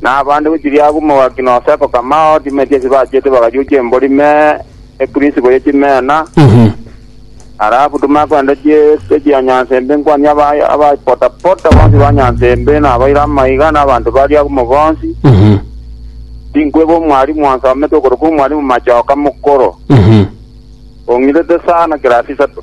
Na abande gochiria agwo omogaki na oseko kamao, chimeti ase bachiete bagachucha embori me ekurisibo ye chimena, halafu tomakwenda chieste chia nyanse mbe nkwani aba abapotapota bonsi ba nyanse mbe na abaire amaiga na abanto baria agwo mogonsi, tinkweba omwalimu onsomete okorokwa omwalimu machoka mokoro, ong'irete sana kirasi isato.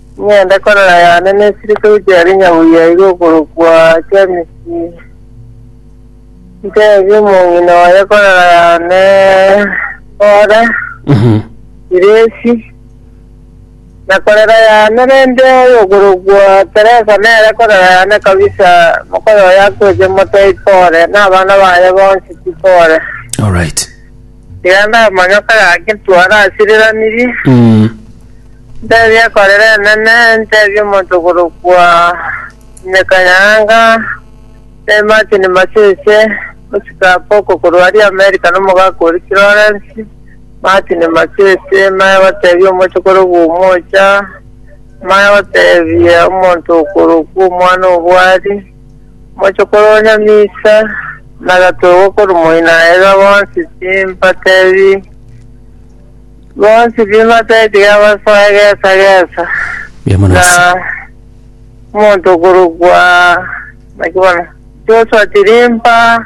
Ng'ende korora yane nesiri togochia are nyabuya iga okorokwa Jamesi. Ntebie omong'ina oye korora yane ore Siresi. Na korera yane rende oyokorokwa Teresa nere korora yane kabisa, mokoyo oye akoeche moto ipore, na abana baye bonsi tipore. Alright. Tiga namagesa gake ntware ase riranirie, Mm. ntebie ekorera enene, ntebie omonto okorokwa Nyakanyanga, Sir Martin Masese, osike Apoko korwa aria Amerika na omogaka oria Kirorensi, Martin Masese, maya gotebia omoche okorokwa Omocha, maya gotebia omonto okorokwa omwana obwari, Mochokoro o Nyamisa nagatoigwa korwa moino aeba bonsi timbatebi bonsi bimatebi tigabasoa egesa gesa Mbuya mono na ase omonto okorokwa naki bono Joshua Tirimba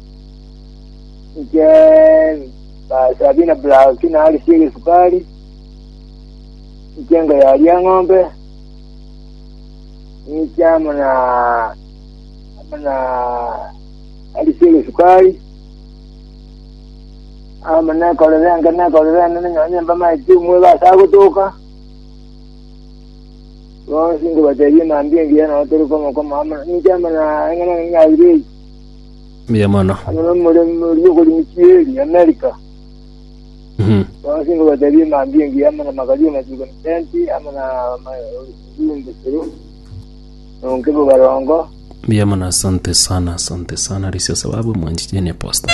Inche ah, Sabina Black narisie gesukari. Inche ngoyaria ng'ombe. Inche amo na amo na arisie gesukari. Amo nekorera enke nekorera ene nenyonye mba maiti umwe gase agotoka. Bonsi ngobateria mambi engiya nao tore komo komo amo inche amo na eng'ana ng'ina ibere. Mbuya mono. Amo nomoremi oria okorimi chieri Amerika. Mhm. Bonsi ngobatebi emambi engiya amo na magari amachiko na tenti amo na amajumbe sero. Nonke bo barongo. Mbuya mono, asante sana, asante sana. Risio sababu mwanchichenie posta.